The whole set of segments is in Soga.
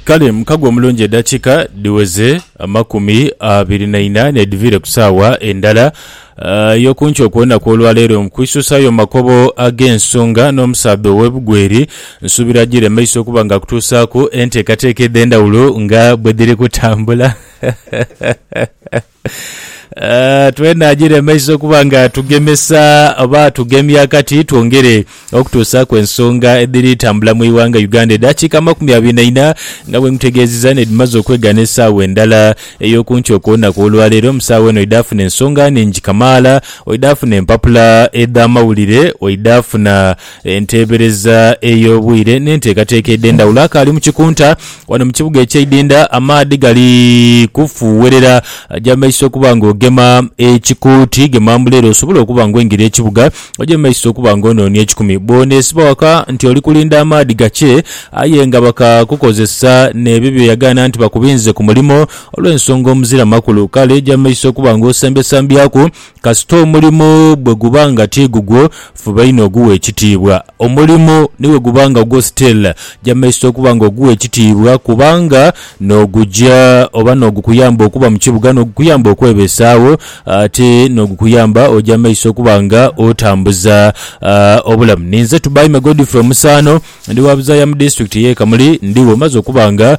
Kale mukago omulungi edakika dhiweze amakumi abiri na ina nedhiviire ku saawa endala eyokunkyo okwonaku olwaleero mukwisusaayo mumakobo agensonga nomusaadha owebugweri nsuubira ajire maiso okuba nga akutuusaaku enteekateeka edhendawulo nga bwedhiri kutambula. Twena giremesa okuba nga tugemesa oba tugemya kati twongere okutuusaaku ensonga edhiri tambula mu ighanga Uganda. Edhakiika amakumi abiri na ina nga bwemutegeeziza nedhimaze okwegaana esaawa endala ey'okunkyo kw'olunaku olwaleero. Mu saawa eno oidhafuna ensonga nhingi kamaala, oidhafuna empapula edh'amawulire, oidhafuna Enteebereza ey'obwire n'enteekateeka edh'endhawulo. Akaali mu kikunta wano mu kibuga eky'e Idinda, amaadhi gali kufuuwerera ja mu maiso okuba ng'ogema ekikuuti. Gema mbu leero osobole okuba ng'oingira ekibuga, oje mu maiso okuba ng'onoonia ekikumi. Bw'oneesiba waka nti oli kulinda amaadhi gakye aye nga bakakukozesa n'ebyo bye yagaana nti bakubinze ku mulimo olw'ensonga omuzira makulu, kale ja mu maiso okuba ng'osembyesambyaku Kasita omulimo bwe guba nga ti gugwo, fuba inho ogughe ekitiibwa. Omulimo ni bwe guba nga gwo still, jamesita okuba nga ogugha ekitiibwa kubanga n'ogugya oba n'ogukuyamba okuba mu kibuga, n'ogukuyamba okwebeesaagho ate n'ogukuyamba ojamesita okuba nga otambuza obulamu. Ninze Tubaime Godfrey Omusaano. Ndi wa buzaaya mu Disitulikiti y'e Kamuli, ndi wo maze okuba nga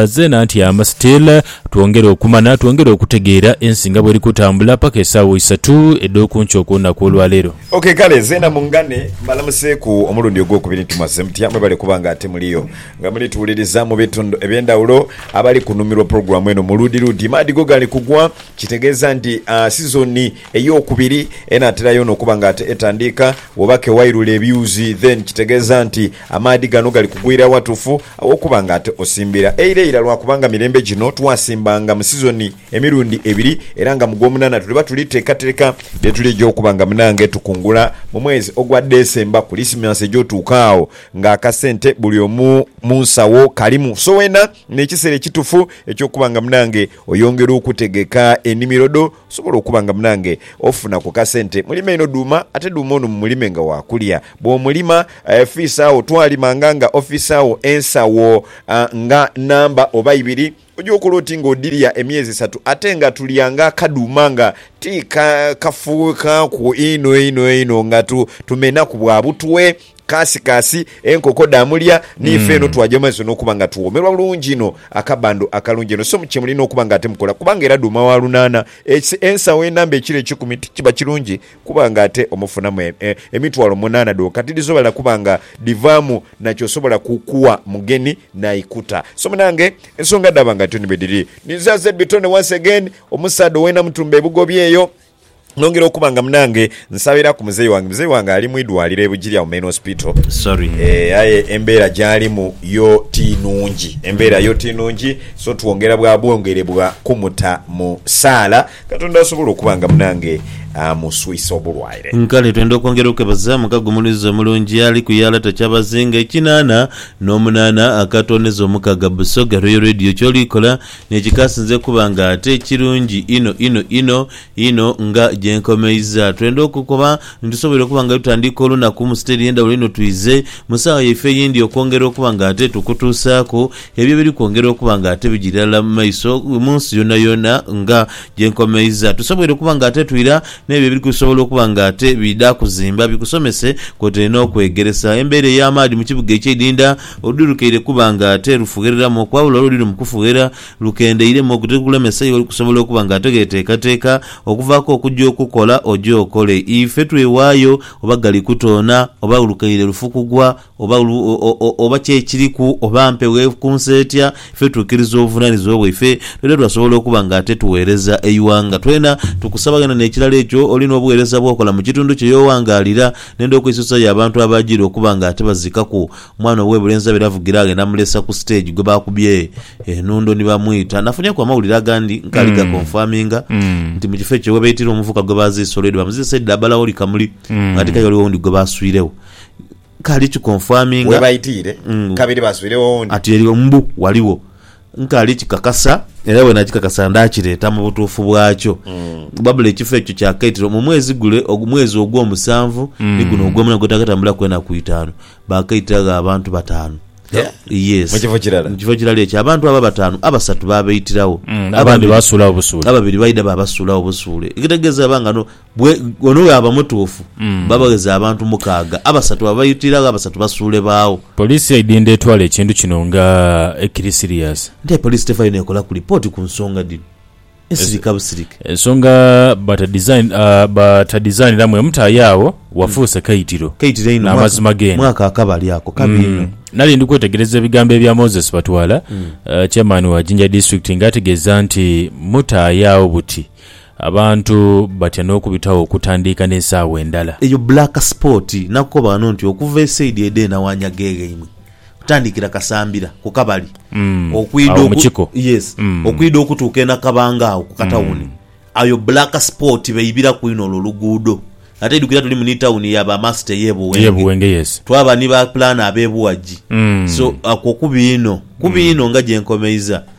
zeena ntyama still. Twongere okumana, twongere okutegeera ensi nga bweri kutambula paka esaawa isatu edh'okunkyo okw'olunaku olwa leero. Ok kale zeena mungane mbalamuseeku omulundi ogwokubiri nti mwazze mutya? Mwebale kuba nga ate muliyo nga muli tuwuliriza mu bitundu eby'endhawulo. Abali kunumirwa pulogulaamu eno mu luudi luudi maadhi go gali kugwa, kitegeeza nti sizoni Eyokubiri enatera yona okuba nga ate etandiika woba ke wairula ebyuzi then kitegeza nti amaadhi gano gali kugwira watufu awokuba nga ate osimbira eira ira lwakuba nga mirembe gino twasimbanga mu sizoni emirundi ebiri era nga mu gwomunana tuliba tuli tekatereka byetulija okuba nga munange tukungula mu mwezi ogwa December kulisimansi ejotuuka agho nga akasente buli omu munsawo kalimu so wena nekisera ekitufu ekyokuba nga munange oyongera okutegeka enimiro dho. Osobola okuba nga munange ofuna ku kasente. Mulime inho dhuuma ate dhuuma ono mumulime nga waakulya. Bw'omulima fiisa agho, twalimanga nga ofiisa agho ensawo nga namba oba ibiri. Oja okola oti nga odhilya emyezi esatu ate nga tulya nga akadhuuma nga ti kafuukaaku inho inho inho nga tumenhaku bwa butwe. Kaasikaasi enkoko dhaamulya, n'ife eno twaja mu maiso n'okuba nga tuwoomerwa bulungi inho akabando akalungi eno. So kye mulina okuba nga ate mukola, kubanga era dhuuma wa lunaana, eki, ensawo enamba ekiro ekikumi, tikiba kirungi kuba nga ate omufunamu e, e, emitwalo munaana dhonka? Tidhisobala kuba nga dhivaamu na ky'osobola ku, kuwa mugeni n'aikuta. So munange, ensonga dhaaba nga dhityo ni bwe dhiri. Ni zazebbi tone once again, omusaadha owe Namutumba e Bugobi eyo. Nongera okuba nga munange nsabira ku muzeyi wange. Muzeyi wange ali mwidwaliro e Bugiri agho Main Hospital eeh aye embera gyalimu yo ti nungi. Embera yo ti nungi so twongera bwa bwongere bwa kumuta mu saala Katonda asobole okuba nga munange amuswisa obulwaire. Kale twenda okwongera okebaza mukago omulunzi omulungi ali ku yalata kyabazinga ekinana nomunana akatondeza omukaga Busoga Royal Radio kyolikola Ni kikasinze kuba nga ate kirungi inho inho inho inho. Nga gye nkomeiza, twenda okukoba ni tusoboire okuba nga tutandiika olunaku mu siteri endhawulo inho twidhe mu saagha yaife eyindi okwongera okuba nga ate tukutuusaaku ebyo ebiri kwongera okuba nga ate bigya irala mu maiso mu nsi yoonayoona. Nga gye nkomeiza, tusoboire okuba nga ate twira n'ebyo ebiri kusobola okuba nga ate bidha kuzimba bikusomese kwotaire n'okwegeresa embeera ey'amaadhi mu kibuga eky'eidhindha. Oludhi lukeire kuba nga te lufughereramu okwawula olwo oluli mu kufughera lukendeiremu ogwo tigukulemesa iwe kusobola okuba nga ate gheteekateeka okuvaaku okugya okukola oje okole. Ife twewaayo oba gali kutoona oba lukeire lufu kugwa oba oba ki ekiriku oba mpewo ekunsa etya ife twikiriza obuvunaanizibwa bwaife twidha twasobola okuba nga ate tugheereza eighanga. Twena tukusaba ghena n'ekirala ekyo oli n'obugheereza bw'okola mu kitundu kye y'oghangaalira N'endha okwisusa y'abantu abaajiire okuba nga tibaziikaku mwana ow'ebulenzi abeera avugira aghe n'amulesa ku siteegi gwe baakubye enhundo ni bamwita. Nafunyeku amawulire agandi nkaali gakonfaminga nti mu kifo ekyo ghebaitira omuvubuka gwe baaziise olwedo baamuziisa idho dha Balaoli Kamuli ng'ate k'aye ghaligho owundi gwe baaswiregho nkaali kikonfaminga Ghebaitiire kabiri baaswiregho owundi. ati eri mbu ghaligho. Nkaali kikakasa, era bwe nakikakasa ndaakireeta mu butuufu bwakyo. Wabula ekifo ekyo kyakaitirwa mu mwezi gule, ogu- mwezi ogw'omusanvu, ni guno ogw'omuna gwetakatambulaku enaku itaanu. Baakaitiragho abantu bataanu. Yeah. Yes. Mu kifo kirala. Mu kifo kirala ekyo. Abantu abo abataanu, abasatu baabaitirawo. Mm, abandi baasuulagho busuule. Ababiri baidha baabasuulagho busuule. Ekitegeeza aba nga no- Bwe, ono bw'aba mutuufu, babagheze abantu mukaaga, abasatu babaitiraagho, abasatu basuule baagho. Poliisi yaidinda etwala ekintu kino nga ekiri siriyasi. Nti aye poliisi tevaayo n'ekolaku lipooti ku nsonga dhino ensirika busirike. Ensonga batadizaniramu emu tayo agho, wafuuse kaitiro. Kaitiro einho. N'amazima geene. Mwaka akabali ako, kabi inho. Nali ndi kwetegereza ebigambo ebya Moses Batwala, Chairman wa Jinja District nga ategeeza nti mutaayo agho buti, Abantu batya n'okubitagho okutandiika n'esaawa endala. Eyo black spot nakukoba ghano nti okuva esaidi edho eno awanyaga egheimwe okutandikira Kasambira ku Kabali okwidha oku yes okwidha okutuuka eNakabanga agho ku katawuni ayo black spot beibiraku inho olwo oluguudo ate idhukira tulimu ni tawuni ya ba Master eye Buwenge twaba ni ba planner abe Buwagi so okwo kubi inho kubi inho nga gyenkomeiza.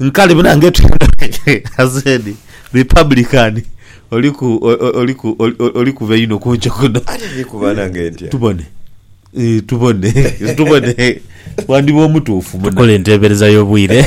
Nkale buna ngeto as in republican oliku oliku olikuba einho kunco kuno tubone tubone tubone wandiba omutuufu muna. Tukola entebereza y'obwire.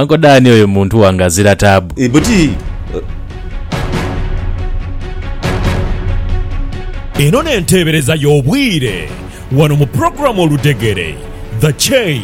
Uncle Dan oyo muntu wange azira taabu. Eeh buti. Eno n'enteebereza y'obwire wano mu pulogulaamu Oludegere, The Chain.